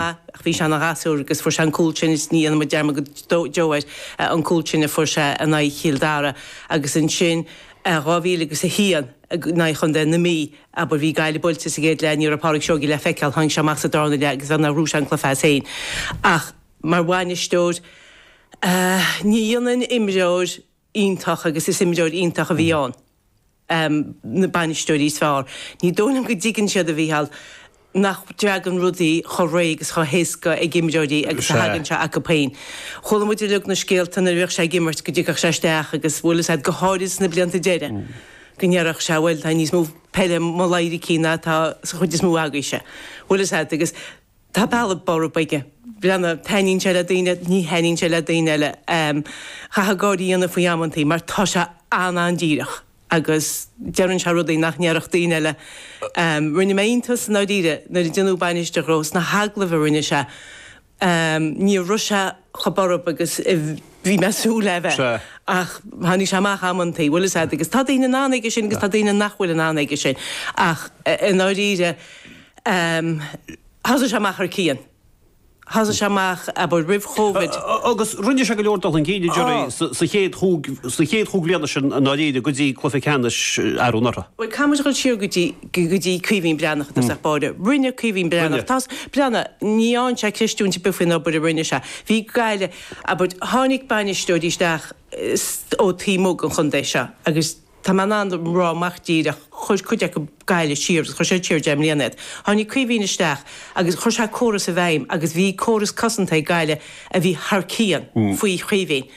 ach bhí sé ina ghasúr agus fuair sé an cúl sin is ní dhéanfaimid dearmad go deo air, an cúl sin a fuair sé in aghaidh Chill Dara agus ansin i dhá mhíle agus a haon in aghaidh chontae na Mí. Abair, bhí Gaillimh buailte sa gcéad leath, ní raibh Pádraig Seoige le feiceáil, tháinig sé amach sa darna leath agus beagnach ghnóthaigh sé an cluiche as féin ach mar bhainisteoir, ní dhéanann imreoir. iontach agus is imreoir iontach a bhí ann. na bainisteoirí is fearr. Ní dóigh liom go dtuigeann siad, a Mhícheáil, nach dtagann rudaí chomh réidh agus chomh héasca ag imreoirí agus a thagann sé acu féin. Chuala muid uilig na scéalta nuair a bhíodh sé ag imirt go dtigeadh sé isteach agus bhuaileadh siad, go háirid sna blianta deireadh, go ndéarfadh sé bhuel tá níos mó peile i mo laidhricín ná atá sa chuid is mó agaibhse. Bhuaileadh siad agus. Tá bealach borb aige. Breathnaigh, taitníonn sé le daoine, ní thaitníonn sé le daoine eile. Chaithfeá gáire a dhéanamh faoi amantaí mar tá sé an-an-díreach agus deireann sé rudaí nach ndéarfadh daoine eile. Rinne mé iontas, i ndáiríre, nuair a deineadh bainisteoir dhó sna hagallaimh a rinne sé, ní raibh sé chomh borb agus a bhí mé ag súil le bheith ach tháinig sé amach amantaí, bhuel, is ea, agus tá daoine in ann aige sin agus tá daoine nach bhfuil in ann aige sin ach, i ndáiríre, Thosaigh sé amach thar cionn. Thosaigh sé amach, abair, roimh Covid. Agus rinne sé go leor dul chun cinn, a deir sé, sa chéad chúig bhliana sin i ndáiríre, go dtí cluiche ceannais arú anuraidh. Bhuel, caithfidh muid dul siar go dtí Caoimhín Breathnach i dtosach báire. Rinne Caoimhín Breathnach, Breathnach, ní dhéanfá ceistiúint ar bith faoin obair a rinne sé. Bhí Gaillimh, abair, tháinig bainisteoirí isteach ó taobh amuigh den chontae seo agus, Tá mé in ann a rá amach díreach, chuir cuid acu Gaillimh siar agus chuir siad siar deich mbliana iad. Tháinig Caoimhín isteach agus chuir sé córas i bhfeidhm agus bhí córas cosanta ag Gaillimh a bhí thar cionn faoi Chaoimhín.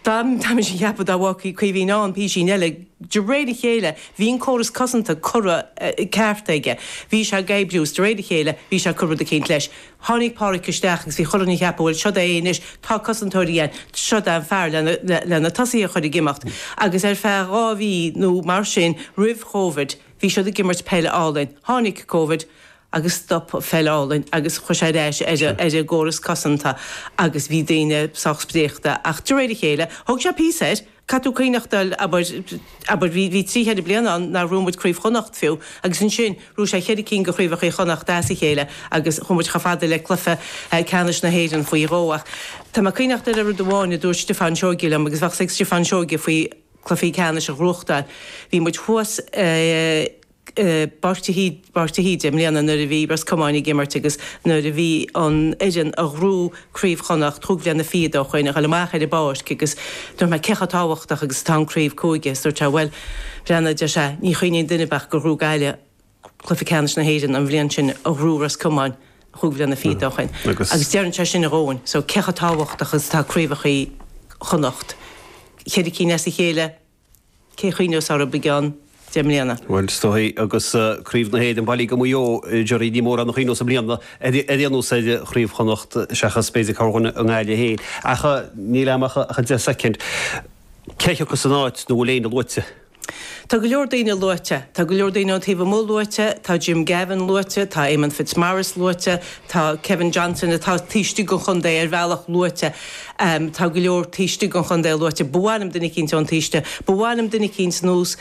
Tá mise ag ceapadh dá bhfágfaí Caoimhín ann písín eile, de réir a chéile bhí an córas cosanta curtha ceart aige. Bhí sé ag oibriú is de réir a chéile bhí sé ag cur rud eicínt leis. Tháinig Pádhraic isteach agus bhí chuile dhuine ag ceapadh, bhuel, seo'd é é anois, tá cosantóirí ann, seo'd é an fear leis na tosaithe a chur ag imeacht. Agus ar feadh dhá mhí nó mar sin roimh Covid, bhí siad ag imirt peil álainn. Tháinig Covid agus stop an pheil álainn agus chuaigh sé ar ais ar an gcóras cosanta agus bhí daoine sách spréachta ach de réir a chéile, thóg sé píosa air, Caithfidh tú cuimhneachtáil, abair. Abair, bhí trí cheithre bliana ann nár ghnóthaigh muid Craobh Chonnacht fiú, agus ansin ghnóthaigh sé cheithre cinn de Chraobhacha Chonnacht as a chéile agus chuaigh muid chomh fada le cluiche ceannais na hÉireann faoi dhó. Ach tá mé ag cuimhneachtáil ar rud amháin a dúirt Stiofán Seoige liom agus bheadh a fhios ag Stiofán Seoige faoi cluichí ceannais a ghnóthachtáil. Bhí muid thuas i. bPáirc de hÍde i mbliana nuair a bhí Ros Comáin ag imirt agus nuair a bhí an fhoireann a ghnóthaigh craobh Chonnacht cúig bliana fichead ó shin ag goil amach ar an bpáirc agus dúirt mé cé chomh tábhachtach agus atá an craobh cúige agus dúirt sé bhuel Glenn a deir sé ní chuimhníonn duine ach gur ghnóthaigh Gaillimh cluiche ceannais na hÉireann an bhliain sin a ghnóthaigh Ros Comáin cúig bliana fichead ó shin agus deireann sé sin an domhan so cé chomh tábhachtach agus atá craobhacha Chonnacht cheithre cinn as a chéile Cé chuimhneos air i gceann deich mbliana? Bhuel, is dóigh, agus Craobh na hÉireann bailithe go Maigh Eo, Gerry, ní mórán a chuimhneos i mbliana, ar aon nós ar Chraobh Chonnacht, seachas b'fhéidir corrdhuine i nGaillimh féin. Ach níl agam ach an deich soicind. Cé a thiocfas in áit nó bhfuil éinne luaite? Tá go leor daoine luaite. Tá go leor daoine ón taobh amuigh luaite, tá Jim Gavin luaite, tá Éamonn Fitzmaurice luaite, Tá Kevin Johnson, atá taobh istigh den chontae, ar bhealach luaite. Tá go leor taobh istigh den chontae luaite. Ba mhaith liom duine eicínt ón taobh istigh, ba mhaith liom duine eicínt nós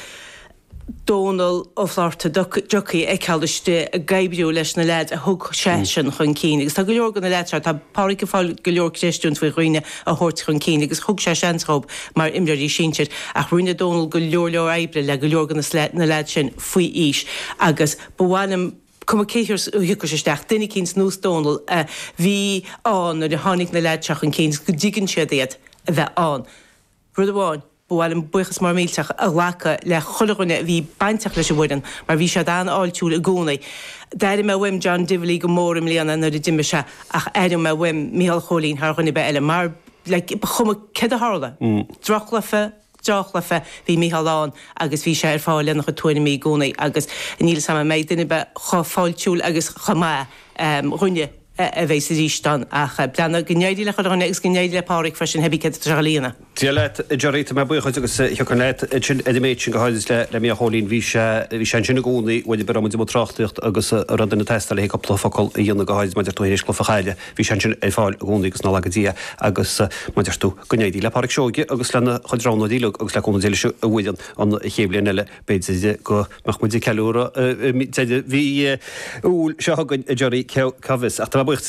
Dónal Ó Fátharta, Ducky, a fheiceáil istigh ag oibriú leis na leaids a thug seisean chun cinn. Agus tá go leor de na leaids seo, tá Páraic ag fáil go leor creistiúint faoi dhaoine a thabhairt chun cinn agus thug sé seans dhóibh mar imreoirí sinsir. Ach rinne Dónal go leor leor oibre le go leor de na leaids sin faoi aois agus ba mhaith liom, cuma cé a thiocfas isteach, duine eicínt nós Dónal a bhí ann nuair a tháinig na lads seo chun cinn is go dtuigeann siad iad a bheith ann. Rud amháin, ba mhaith liom buíochas mór millteach a ghlacadh le chuile dhuine a bhí bainteach leis an bhfoireann mar bhí siad an-fháiltiúil i gcónaí. D'airigh mé uaim John Divilly go mór i mbliana nuair a d'imigh sé ach aireoidh mé uaim Micheál Chóilín thar dhuine ar bith eile mar like ba chuma céard a tharla, droch-chluiche, droch-chluiche, bhí Micheál ann agus bhí sé ar fáil lena chuid tuairimí i gcónaí agus níl 'fhios a'm an mbeidh duine ar bith chomh fáiltiúil agus chomh maith de dhuine a bheas aríst ann ach breathnaigh. Go n-éirí le chuile dhuine agus go n-éirí le Páraic freisin, theibí céard tríocha líon. Dia leat, a Gerry, tá mé buíoch dhuit agus thiocfainn leat ansin ar an méid sin go háirid le Micheál Chóilín. Bhí sé, bhí sé ansin i gcónaí, bhuel aon uair a raibh muid i mbun tráchtaireacht agus a raibh duine ag teastáil le haghaidh cúpla focal a dhéanamh go háirid mar a deir tú th'éis cluiche a chailleadh. Bhí sé ansin ar fáil i gcónaí agus nár laga Dia agus mar a deir tú go n-éirí le Pádhraic Seoige agus lena chuid roghnóirí uilig agus le cúnamh Dé leis an bhfoireann an chéad bhliain eile b'fhéidir go mbeadh muid ag ceiliúradh deireadh mhí Iúil seo chugainn a Gerry, cá bhfios. Ach tá mé buíoch de